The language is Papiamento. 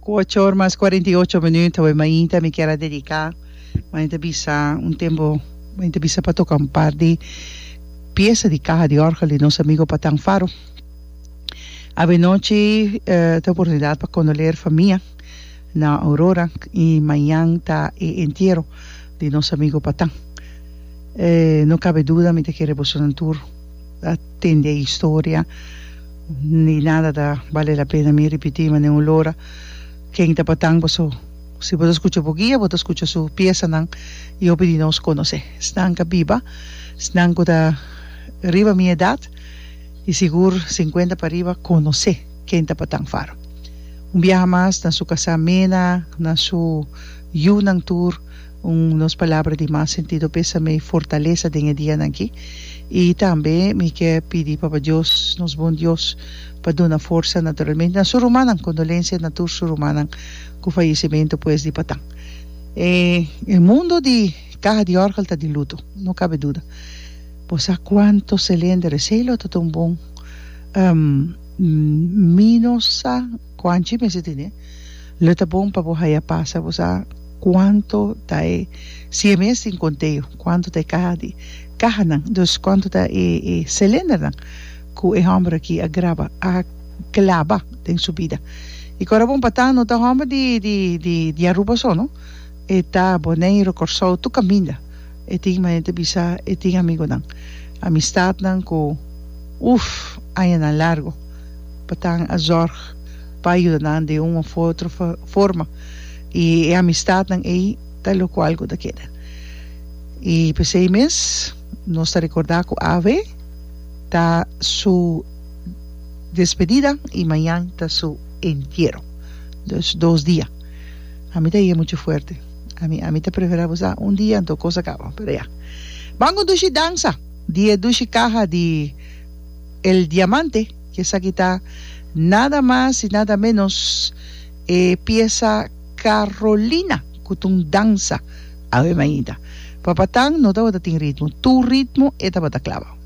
Ku ocho or mas kuarenta i ocho minüt awor mainta mi kier a dediká. Mainta bisa un tempu mainta bisa pa toka un par di piesa di kaha di òrgel di nos amigu Patang Faro. Avenochi ta oportunidat pa kondoleer famia na Aurora i mañan ta e entiero di nos amigu Patang. No kabe duda mi ta kere bosonan tur. a tende e historia ni nada ta bale la pena mi ripiti ma den un lora ken ta patan boso si bo ta skucha bo guia bo ta skucha su piesanan i hopi di nos konosé esnan ka biba esnan ku ta riba mi edat i sigur sinkuenta pariba konosé ken ta patan faro un biaha mas na su kasá mena na su yunan tur. Un nos palabra di mas sentido p'esa mei fortalesa den e dianan aki. I tambe mi ke pidi Papa Dios, nos bon Dios, pa duna forsa naturalmente na su rumannan. Kondolensia na tur su rumannan ku fayesimentu pues di patan. E el mundo di kaha di orgel ta di luto, no kabe duda. Bo sa kuanto selender esei lo ta ta un bon mino sa. Cuanchi mester tine? Lo ta bon pa bo haya pas pa bo sa cuanto ta e si e mes tin conteo, cuanto ta e caha di cahanan, dus cuanto ta e e cilindernan cu e homber aki a graba, a claba den su bida. Y cu a bon pa ta, no ta homber di di di di Aruba so no, e ta Boneiro, Corsou, tur caminda e tin manera ta bisa e tin amigonan, amistadnan cu uff añanan largo. pa tan a zorg pa ayuda nan den un of otro forma y e amistadnan ey ta loco algo ta keda y pesey mes nos ta recorda cu av ta su despedida y mañan ta su entiero dus dos dia ami ta yega mucho fuerte ami ami ta prefera bo sa un dia anto cos a caba pero ya ban condushi danza di e dushi caha di El diamante, ki esaki ta nada mas y nada menos e piesa Carolina cu ta un dansa, awe mainta, papatan no tabata tin ritmo, tur ritmo e tabata claba.